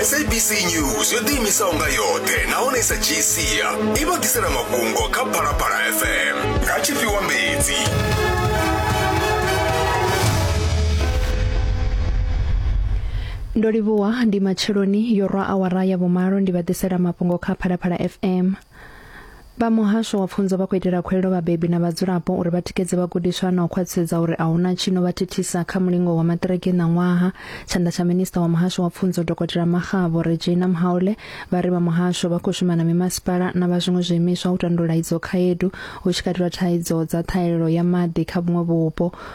sabc news yo ḓiimisaho nga yoṱhe nahone i sa dzhii sia i vha ḓisela mafhungo kha phalaphala fm nga tshifhiwa mbedzi ndo livhuwa ndi matsheloni yo rwa awara ya vhumalo ndi vha ḓisela mafhungo kha phalaphala fm vha muhasho wa pfunzo vha khou itela khuwelelo vhabebi na vhadzulapo uri vha tikedze vhagudiswa na u khwaṱhisedza uri a huna tshino vha thithisa kha mulingo wa maṱiriki ṋaṅwaha tshanḓa tsha minista wa muhasho wa pfunzo dokotela makgabo regina mhaule vha ri vha muhasho vha khou shuma na mimasipala na vha zwiṅwe zwiimiswa u tandulula idzo khaedu hu tshi katelwa thaidzo dza ṱhahelelo ya maḓi kha vhuṅwe vhupo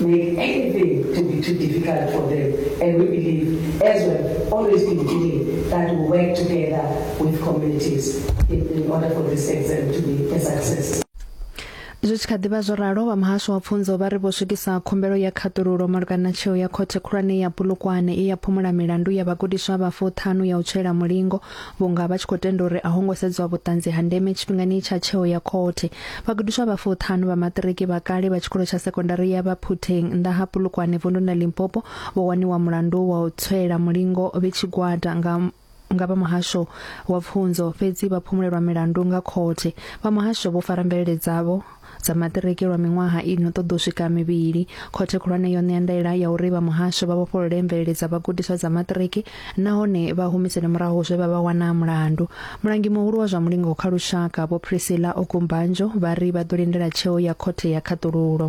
make anything to be too difficult for them. And we believe, as we've always been doing, that we work together with communities in, in order for this exam to be a success. zwi tshi kha ḓivha zwo ralo vha muhasho wa pfunzo vha ri vho swikisa khumbelo ya khaṱululo malugana na tsheo ya khothe khulwane ya bulukwane i ya phumula milandu ya vhagudiswa vha fuṱhanu ya u tswela mulingo Vhunga vha tshi khou tenda uri a ho ngo sedzwa vhuṱanzi ha ndeme tshifhingani tsha tsheo ya khothe, vhagudiswa vha fuṱhanu vha maṱiriki vha kale vha tshikolo tsha sekondari ya Vhaphutheng nnḓa ha Polokwane vunḓuni ḽa Limpopo vho waniwa mulandu wa u tswela mulingo vhe tshigwada nga nga vha muhasho wa pfunzo fhedzi vha phumulelwa milandu nga khothe vha muhasho vho fara mvelele dzavho dza maṱiriki lwa miṅwaha i no ṱoḓa u swika mivhili khothe khulwane yo ṋea ndaela ya uri vha muhasho vha vhofholole mvelele dza vhagudiswa dza maṱiriki nahone vha humisele murahu zwe vha vha wana mulandu mulangi muhulu wa zwa mulingo kha lushaka vho priscilla okumbanjo vha ri vha ḓo lindela tsheo ya khothe ya khaṱululo